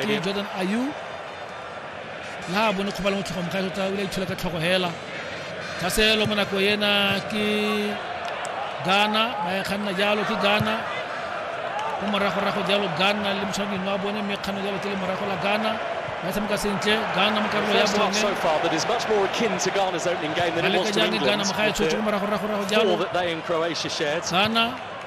ke jordan ayu la bone kgoba le motlhogo mogae tota o ile itshola ka tlhogo hela tsa selo mo nako ena ke ghana ba e kganna jalo ke ghana ko moragorago jalo ghana le motshwaneding wa bone mme kganno jalo tse le morago la ghana ba tshameka sentle ghana mo karolo ya bone ba leka jang ghana mogae tshotse ko moragoragorago jalo ghana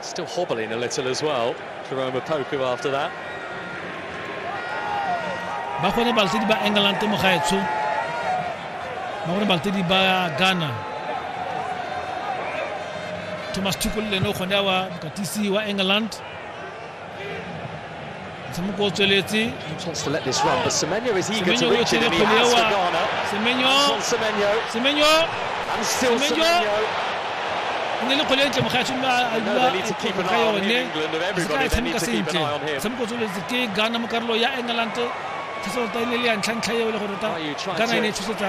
Still hobbling a little as well, Jerome Opoku after that. ba gone baltedi ba england mo gaetsho ba gone baltedi ba ghana thomas tuku le ene o kgone wa mokatisi wa england motshameko o tsweletse ne le kgole ntle mogatsho mme a dula dikgoko ga yone se ka tshameka sentle motshameko o tsweletse ke ghana mo karolo ya england thasota e ne le ya ntlhantlha eo le gore ta ghana e ne e tshosetsa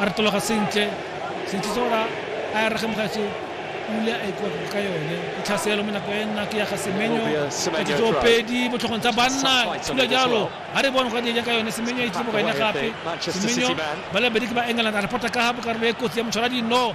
a re tologa sentle sentle se ora a ya rege mogatse pula a ikwa ka yone e tlhaselo mo nako e nna ke ya ga semenyo katsitso pedi botlhogong tsa banna thula jalo ga re bone go di ka yone semenyo e tlile mo gaene gape semenyo ba le bedi ke ba england a repota ka ga bokarolo e kotsi ya motshwara dino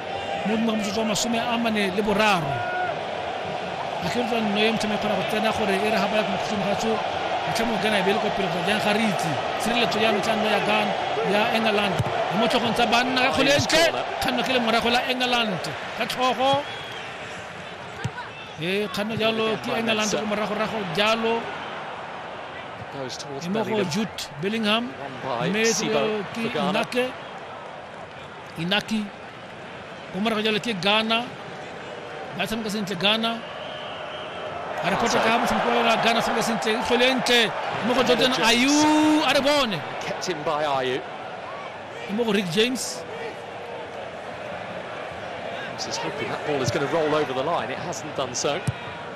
mo dingwaga motsotso wa masome a mane le boraro akheletsa nno ya mothame kgona go tsena gore e re ga baya mokhutlong ga tso motlhamo gana e be le kwa pele kgotsa jang ga re itse tshireletso ya ntlha nno ya gan ya england mo tlhogong tsa banna ka kgole entle kganno ke le morago la england ka tlhogo e kganno jalo ke england ko moragorago jalo e mo go jute bellingham mme ke nake inaki kwa morago jalo ke ghana ba tshameka sentle ghana a re kgotsa ka motshameko wa ghana tshameka sentle e tlhole ntle mo go jordan ayu a re bone mo go rick james This is hoping that ball is going to roll over the line. It hasn't done so.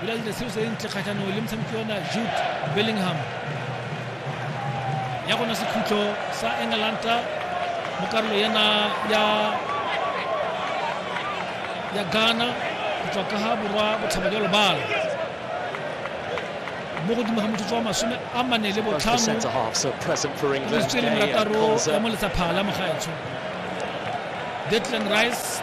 Bilal da seo se ntle kgatlhanong le motshameki ona Jude Bellingham ya gona sekhutlo sa England mo karolo yana ya ya Ghana go tswa ka ga borwa botlhaba jwa lobala mo godimo ga motsotso wa masome a mane le botlhano le marataro ya mo letsaphala mo gaetsho Declan Rice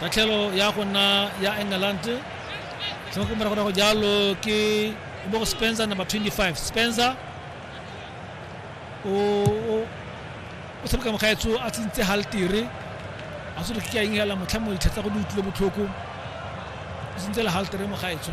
tatlhelo ya go nna ya england sengwe ko moragorago jalo ke o bo go spencer number 25 spencer o o- o tshameka mogaetso a tsentse haltere a se re ke a ingela motlha mo ditlha tsa go di utlwile botlhoko o tsentse le haltere mogaetso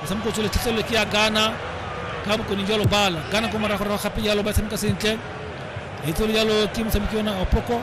motshameko o tsweletlhetlhelelo ke ya ghana ka bokone jalo bala ghana ko morago rago gape jalo ba tshameka sentle e tswele jalo ke motshameki ona opoko